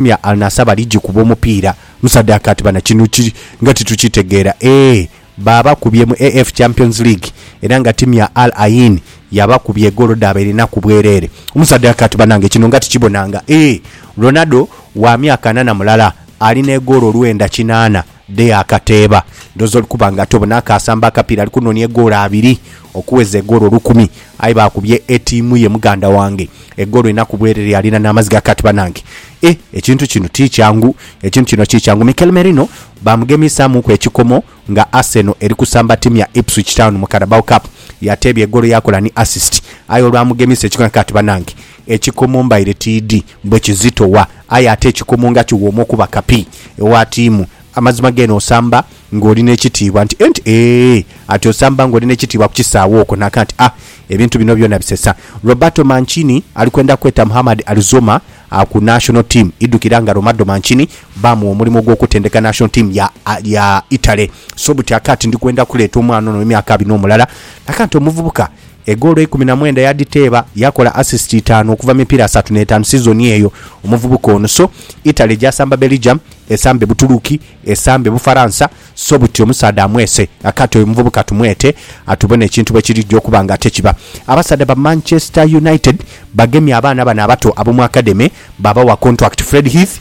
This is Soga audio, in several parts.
Mia Al Nassr bali gikuba omupiira mu sadaka ati bana kino ki nga titukitegeera eeh baabakubye mu AF Champions League era nga tiimu ya Al Ain yabakubye egoolo dhaaba erinaku bwereere mu sadaka ati banange kino nga tikibonanga eeh Ronaldo wa myaka ana na mulala ali n'egoolo olwenda kinaana dhe akateeba. Ndhoozi oli kuba nga ati obona akaasamba akapiira ali kunoonia egoolo abiri okuweza egoolo olukumi aye baakubye etiimu ye muganda wange egoolo ina ku bwerere alina n'amaziga kati banange eh ekintu kino ti kyangu ekintu kino ti kyangu Mikel Merino baamugemiisaamuuku ekikomo nga Arsenal eri kusamba ttiimu ya Ipswich Town mu Carabao Cup yateebya egoolo yaakola ni assist aye olwamugemiisa ekikomo kati banange Ekikomo mbaire tiidhi bwe kizitowa, aye ate ekikomo nga kiwooma okuba kapi ewa tiimu. Amazima geene osamba ng'oli n'ekitiibwa nti enti eeh! Ati osamba ng'oli n'ekitiibwa ku kisaawe okwo naka nti ah! Ebintu bino byona bisesa. Roberto Mancini ali kwenda kweta Muhammad Alizoma ku National Team. Idhukira nga Romardo Mancini baamugha omulimo gw'okutendeka National Team ya ya Italy. So buti aka ati ndi kwenda kuleeta omwana ono ow'emyaka abina omulala naka nti omuvubuka Egoolo eikumi na mwenda yadhiteeba, yakola asisiti itaanu okuva mu mipiira asatu n'etaanu sizoni eyo, omuvubuka ono. So Italy gyasamba Belgium, esambe Butuluki, esambe Bufaransa, so buti omusaadha amwese akati oyo omuvubuka tumwete atubone ekintu bwe kirigya okuba nga ate kiba. Abasaadha ba Manchester United bagemye abaana bano abato ab'omu akademe baabawa kontwakiti, Fred Heath,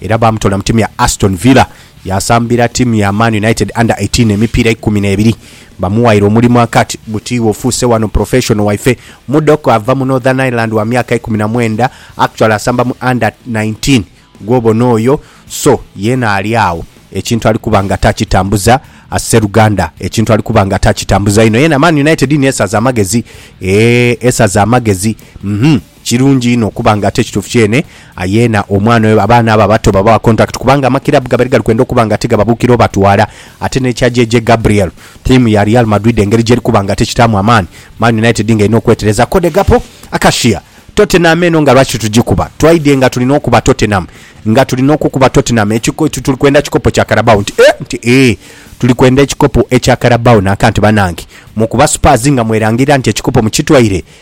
era baamutoola mu ttiimu ya Aston Villa. Yaasambira ttiimu ya Man United Under Eighteen emipiira eikumi n'ebiri. Bamuwaire omulimu Akat buti iwe ofuuse wano professional waife. Mudok ava mu Northern Ireland wa myaka ikumi na mwenda, actually asamba mu Under Nineteen gw'obona oyo, so yeena ali agho ekintu ali kuba nga takitambuza as sseruganda, ekintu ali kuba nga takitambuza inho. Yeena Man United niyo esaze amagezi, eeh esaze amagezi, uhmm. Kirungi inho okuba nga ate kituufu kyene yeena omwana oyo abaana abo abato babawa contact kubanga amakiraabu gabaire gali kwenda okuba nga tigababuukira obatwala ate n'ekya JJ Gabriel, ttiimu ya Real Madrid engeri gyeri kuba nga tekitaamu amaani, Man United nga erina okwetereza. Code Gappo, Acacia, Tottenham eno nga lwaki tugikuba? Twaidhye nga tuli n'okuba Tottenham, nga tuli n'okukuba Tottenham ekiko nti tuli kwenda kikopo kya Carabao nti eeh nti eeh tuli kwenda ekikopo ekya Carabao naka nti banange mukuba Spurs nga mwerangirira nti ekikopo mukitwaire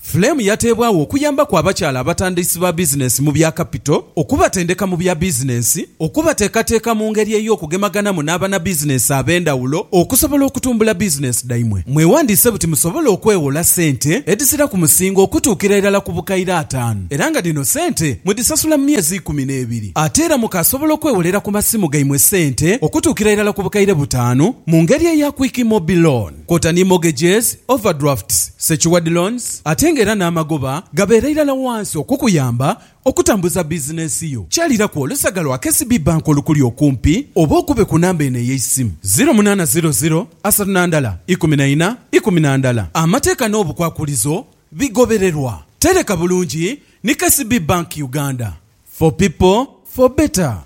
Flame yateebwagho okuyambaku abakyala abatandiisi ba bizinensi mu bya kapito, okubatendeka mu bya bizinensi, okubateekateeka mu ngeri ey'okugemaganamu n'abanabizinensi ab'endhawulo okusobola okutumbula bizinensi dhaimwe. Mwewandiise buti musobole okwewola ssente edhisira ku musingo okutuukira irala ku bukaire ataanu era nga dhino ssente mudhisasula mu myezi ikumi n'ebiri. Ate era mukaasobola okwewolera ku masimu gaimwe ssente okutuukira irala ku bukaire butaanu mu ngeri eya Quick Mobi Loan. kwota ni mortgages, overdrafts, secured loans ate nga era n'amagoba gabeera irala wansi okukuyamba okutambuza bizinensi yo. Kyaliraku olusaga lwa KCB Bank olukuli okumpi oba okube ku namba eno ey'eisimu, ziro munaana ziro ziro asatu na ndala ikumi na ina ikumi na ndala. Amateeka n'obukwakulizo bigobererwa. Tereka bulungi ni KCB Bank Uganda. For people, for better.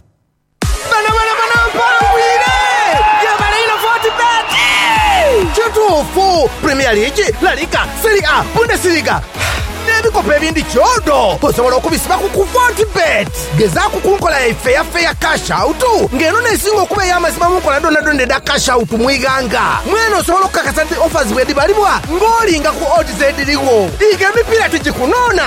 Kituufu, Premier League, La Liga, Serie A, Bundesliga, n'ebikopo ebindi kyodo osobola okubisiba ku ku Fortebet. Gezaaku ku nkola yaife eya Fair Cash Out nga eno n'esinga okuba ey'amazima mu nkola dhoonadhoona edha Cash Out mu ighanga. Mwene osobola okukakasa nti offers bwedhibalibwa ng'olinga ku odds edhirigho. Diga emipiira tigikunoona!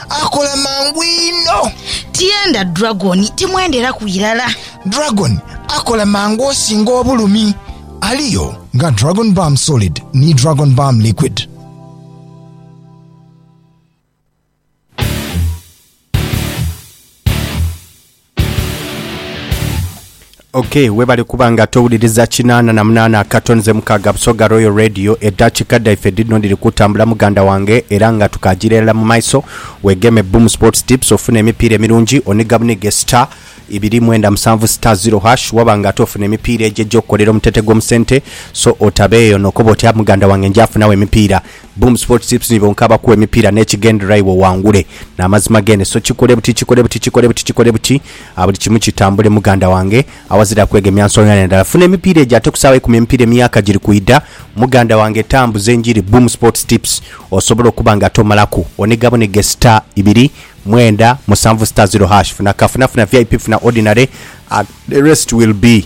Akola mangu inho. Tienda Dragon, timwenderaku irala. Dragon akola mangu osinga obulumi. Aliyo nga Dragon Balm Solid ni Dragon Balm Liquid. Ok webale kuba nga towuliriza kinaana na munaana akatonze mukaaga Busoga Royal Radio. Edakika dhaife dhidhino dhiri kutambula muganda wange era nga tukagira irala mu maiso. Wegeme Boom Sports Tips ofune emipiira emirungi oniga bunige star ibiri mwenda musanvu star zero hash waba nga ate ofuna emipiira egyo egyokukolera omutete gwo mu sente so otabeeyo nokoba otya muganda wange njafunawo emipiira Boom Sports Tips nibo nkabakugha emipiira n'ekigendererwa iwe owangule n'amazima gene so kikole buti kikole buti kikole buti kikole buti buli kimu kitambule muganda wange awazira kwegemya nsonga yona ndala funa emipiira egyo ate ku saawa ikumi emipiira emyaka giri kwidha muganda wange tambuza enjiri Boom Sports Tips osobole okuba nga tomalaku oniga bunige star ibiri mwenda musanvu star zero hash funa kafuna funa vip funa ordinary and the rest will be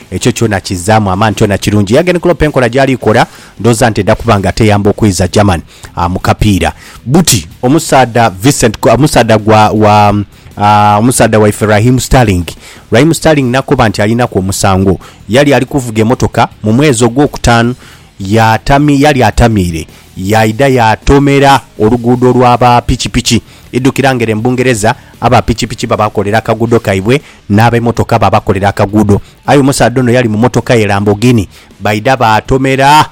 Ekyo kyona kizzaamu amaani, kyona kirungi. Yagen Klopp enkola gy'ali kola ndhooza nti eda kuba nga teyamba okwiiza German mu kapiira. Buti omusaadha Vincent, omusaadha gwa, wa, omusaadha waife Raheem Sterling, Raheem Sterling nakoba nti alinaku omusango. Yali ali kuvuga emotoka mu mwezi ogwokutaanu. Yali atamiire, yaidha yaatomera oluguudo lwa ba pikipiki. Idhukira nga ere mu Bungereza aba pikipiki babakolera akaguudo kaibwe n'abemotoka babakolera akaguudo. Aye omusaadha ono yali mu motoka ye Lamborghini, baidha baatomera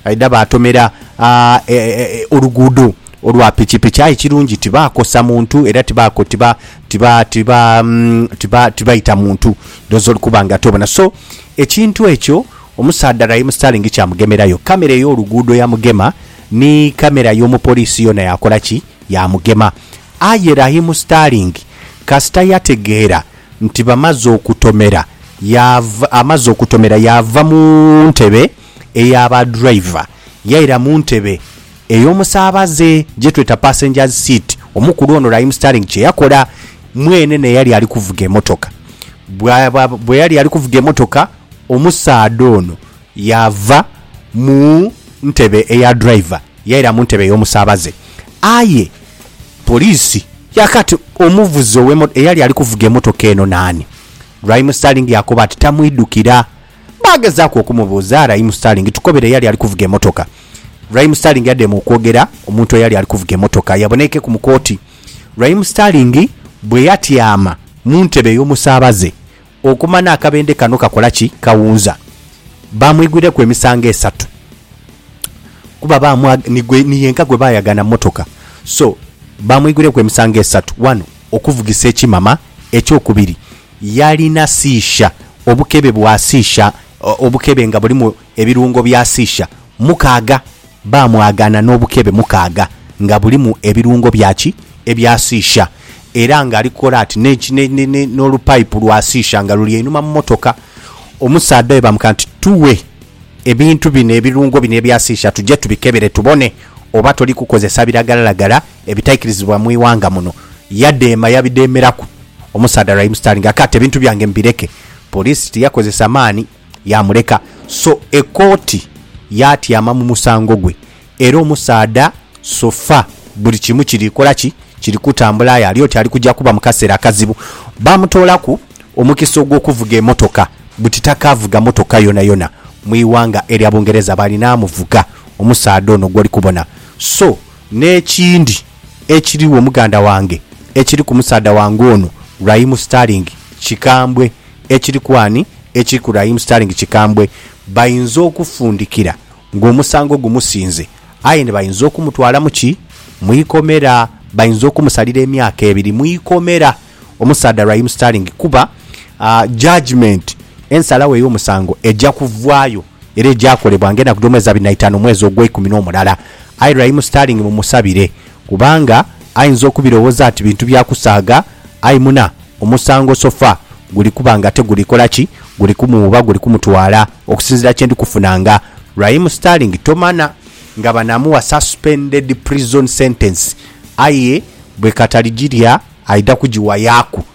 baidha baatomera oluguudo olwa pikipiki. Aye ekirungi tibaakosa muntu era tibaita muntu. Doozi oli kuba nga tobona. So, ekintu ekyo. Omusaadha Raheem Sterling kyamugemerayo, kamera ey'oluguudo yamugema ni kamera y'omupoliisi yoona yakola ki? Yaamugema. Aye Raheem Sterling kasita yategeera nti bamaze okutomera, yaava, amaze okutomera yaava mu ntebe eya ba driver yaira mu ntebe ey'omusaabaze gye tweta passengers seat. Omukulu ono Raheem Sterling kye yakola, mwene n'eyali ali kuvuga emotoka, bwaba, bwe yali ali kuvuga emotoka, Omusaadha ono yaava mu ntebe eya driver yaira mu ntebe ey'omusaabaze aye poliisi yakoba nti omuvuzi ow'emotoka eyali ali kuvuga emotoka eno naani. Raim Sterling yakoba nti tamwidhukira. Baagezaaku okumubuuza Raim Sterling, tukobere eyali ali kuvuga emotoka. Raim Sterling yadema okwogera omuntu eyali ali kuvuga emotoka yaboneikeku mu kooti. Raim Sterling bwe yatyama mu ntebe ey'omusaabaze, Okumana akabendhe kano kakola ki, kawunza. Baamwigwireku emisango esatu kuba baamwa, ni gwe, ni yenka gwe baayagana mu motoka. So, baamwigwireku emisango esatu. Wano, okuvugisa ekimama. Eky'okubiri, yalina siisha, obukebe bwa siisha, obukebe nga bulimu Ebirungo bya Sisha mukaaga. Baamwagaana n'obukebe mukaaga nga bulimu ebirungo bya ki? Ebya Sisha. Era ng'ali kukola ati n'eki, ne, ne, ne, n'olupayipu lwa Sisha nga luli einhuma mu motoka. Omusaadha oyo baamugamba nti, Tughe ebintu bino, ebirungo bino ebya Sisha tuje tubikebere tubone oba toli kukozesa biragalalagala ebitaikirizibwa mu ighanga muno. Yadheema, yabidheemeraku. Omusaadha Raheem Sterling akati, Ebintu byange mbireke. Poliisi tiyakozesa maani. yaamuleka. So ekooti yaatyama mu musango gwe. Era omusaadha so far buli kimu kiri kola ki? Kiri kutambula aye ali oti ali kuja kuba mu kaseera akazibu. Baamutoolaku omukisa ogw'okuvuga emotoka buti takaavuga motoka yonayona mu ighanga erya Bungereza baalina amuvuga omusaadha ono gw'oli kubona. So n'ekindi ekirigho muganda wange ekiri ku musaadha wange ono Raheem Sterling kikambwe. Ekiri ku ani ekiri ku Raheem Sterling kikambwe, bainza okufundikira ng'omusango gumusinze aye ni bainza okumutwala mu ki? Mu ikomera. Bainza okumusalira emyaka ebiri mu ikomera omusaadha Raheem Sterling kuba judgement, ensalagho ey'omusango eja kuvaayo era eja kolebwa ng'enaku dh'omwezi abiri na itaanu omwezi ogweikumi n'omulala aye Raheem Sterling mumusabire. Kubanga ainza okubirowoza ati bintu bya kusaaga, aye muna omusango sofa guli kuba nga te guli kola ki? Guli kumuwuuba, guli kumutwala, okusinzira kye ndi kufunanga. Raheem Sterling tomana nga banamuwa suspended prison sentence aye bwekatali gilya aidha kugiwayaku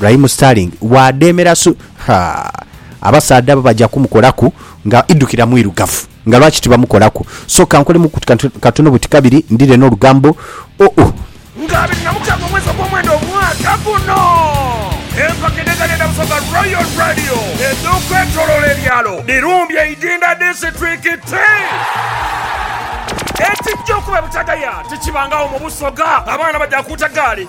Raheem Sterling bwademera su haa abasaadha bo baja kumukolaku nga idukira mwirugavu nga lwaki tibamukolaku so kankolemu ku katono buti kabiri ndire nolugambo oh uh. Nga abiri na mukaaga omwezi ogwomwenda omwaka guno, empaka edheganhenda mu Soga Royal Radio edhokwetoloola ebyalo dhirumbye Idinda disiturikiti. Ekijja okuba ebitagaya tikibangagho mu Busoga, abaana baja kuuta gaali.